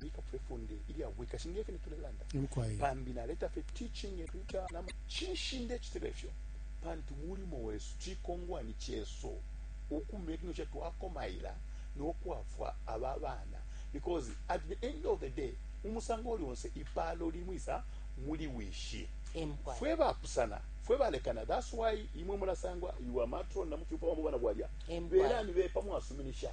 bika fwe funde ilya bwikashi nge fyo tulelanda pambi naleta fye teaching eluta nama cinshi ndecitile fyo pantu mulimo wesu cikongwani cesu ukumira kino kye twakomaila nokwafwa aba bana because at the end of the day umusango uli onse ipalo limwisa muli wishi fwe bapusana fwe balekana that's why imwe mulasangwa iwa matron na mufyupa wa mubana bwalya belani bepa mwasuminisha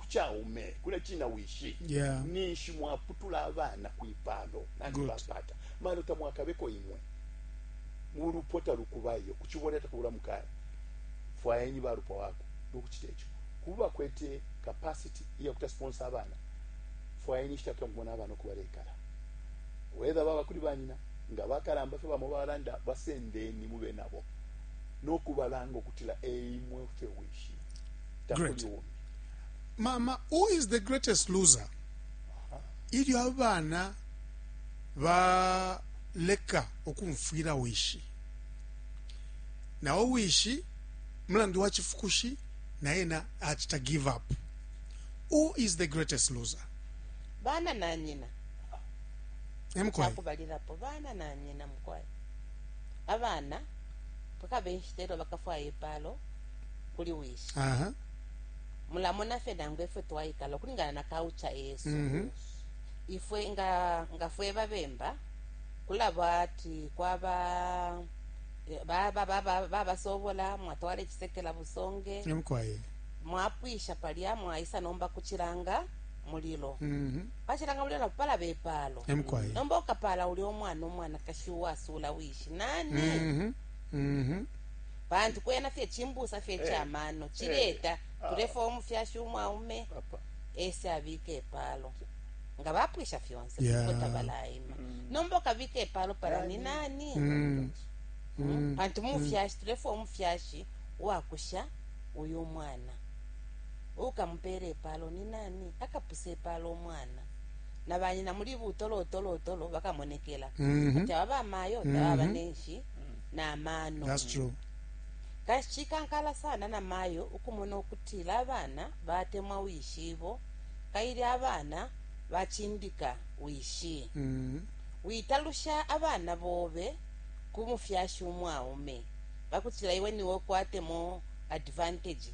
ku caume kule cina wishi yeah. ninshi mwaputula abana kwipalo nani bapata malo tamwakabeko imwe mulupwa talukubayo kuchibola takubula mukaya fwayeni balupwa wako nokuchita ekyo kuba kwete capacity iya kuta sponsor abana fwayeni chita kya mubona abana okubalekala whether baba kuli banyina nga bakalamba fe bamo balanda basendeni mube nabo nokubalanga okutila eimwe fe wishi takuli mama who is the greatest loser ilyo abana baleka ukumfwila wishi nawo wishi mulandu wa chifukushi na ena achita give up who is the greatest loser bana na nyina emkwai chakubalilapo bana na nyina mukwai abana pakabe nshita elyo bakafwaya ipalo kuli wishi Aha. mulamona fye nangu efwe twaikala ukulingana na kaucha yesu Mhm. ifwe nga nga fwe babemba kulaba ati kwaba eh, baba- baba- babasobola mwatwala ekisekela busonge Emukwaye. mwapwisha palya mwaisa nomba kuchilanga mulilo Mhm. pachilanga mulilo napo palaba epalo Emukwaye. nomba ukapala uli omwana omwanakashi uwasula wishi nani Mhm. Mhm. pantu kwena fye chimbusa fye Eh. cha mano chileta Ah. tulefwa umufyashi umwaume Papa. ese abike epalo nga bapwisha fyonse Yeah. kuko tabalaima nomba ukabika epalo pala ni nani Mm. Mm. pantu mufyashi tulefwa umufyashi uwakusha uyu umwana ukamupera epalo ni nani akapusa epalo umwana na banyina muli butolotolotolo bakamonekela Mhm. ati aba bamayo tababa Mhm. nenshi na mano That's true. kanshi cikankala sana na mayo ukumona ukutila abana batemwa wishibo kaili abana bacindika wishi Mhm. witalusha abana bobe ku mufyashi umwaume bakutila iwe niwe kwatemo advantage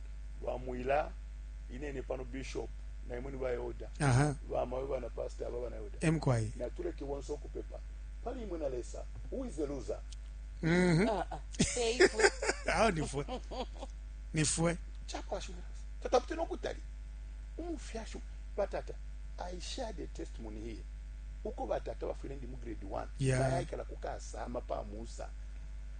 ba mwila inene pano bishop na imwe ni ba elder aha ba mawe bana pastor aba bana elder emkwai na tuleke bonse okupepa pali imwe na lesa who is the loser mhm Ah, ah. Eh, ifwe. aho nifwe nifwe chakwashumira tatapite nokutali umufyashi batata i shared a testimony here uko batata bafwile ndi mu grade 1 Yeah. bayayikala kukasama pamusa